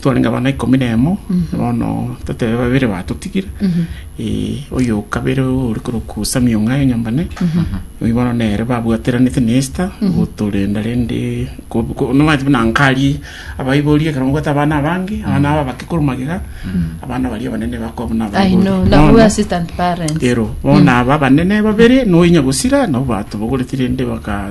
Twarenge abana ikomi na emo, bono totebe babere batotigire, eh, oyo o kabere ore korokwa Sami Ong'ae Nyambane, oyio bono nere babwateranete na Esther gotorenda rende ko- ko- nomanche buna nkarie abaiboria ekero mbwate abana abange, abana aba abake korwa magega, abana baria abanene bakoba buna I know, abaiboria. now Bono- we assistant parents. ero bono aba abanene babere noyo nyagosira nabo batobogoretie rende baka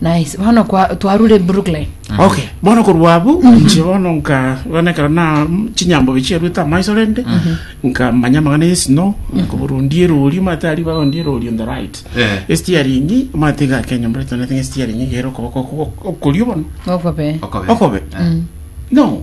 Nice. Bono kwa twarure Brooklyn. okay bono korwa abwo inche bono nka bono ekero na chinyambobe chiaruete amaiso rende nkamanya amagana ya esino nkoborundia erori omanyete aria barondia erori on the right Eh. estiaringi omanyete iga kenya mbore tone estiaringi igere okoboko oko- okorio bono Okobe. Okobe. okobe no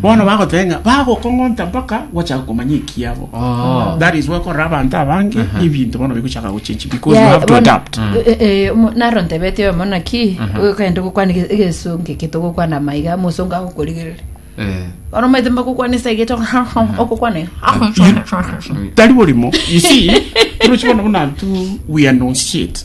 Bono bagoteba ng'a bagokong'onta mpaka gwachaka komanya ekiabo. Oh. That is why korora abanto abange Aha. ebinto bono bigochaka gochenchi because you Yeah, have to bono- adapt. Mm. eh, eh, omo- naro ntebete oyomo naki okagenda ogokwana ege- egesonge eke togokwana maiga mosongo agokorigerera Eh. bono omanyete mbagokwana esa egete okokwana ere. Tari borimo. You see, turochi bono buna tu we announce shit.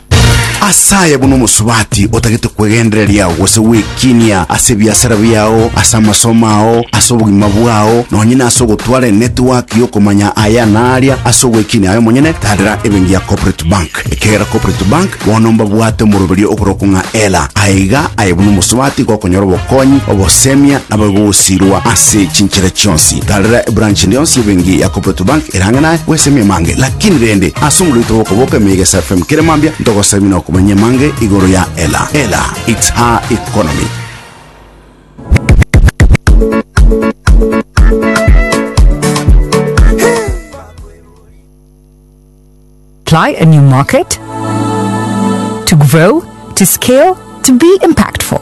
Ase aya buna omosubati otagete kwegendereria gose gwekinia ase ebiasara biao, ase amasomo ao, ase obogima bwao, nonye nase ogotwara enetiwaki y'okomanya aya na aria ase ogwekinia aye omonyene, tadera ebenki ya Corporate Bank. Ekiagera Corporate Bank bono mbabwate omoroberio oboroko ng'a Ela. Aye iga, aye buna omosubati gokonyora obokonyi, obosemia, nabo igogosirwa ase chinchera chionsi. Tadera ebranch eria yonsi y'ebenki ya Corporate Bank ere ang'e naye, bwesemie mange. Kindi rende, ase omoroito bw'okoboka emeyega ya SFM kere mambia, ntogosaba buna okomanya amange igoro ya Ela. Ela, it's her economy. Apply a new market to grow, to scale, to be impactful.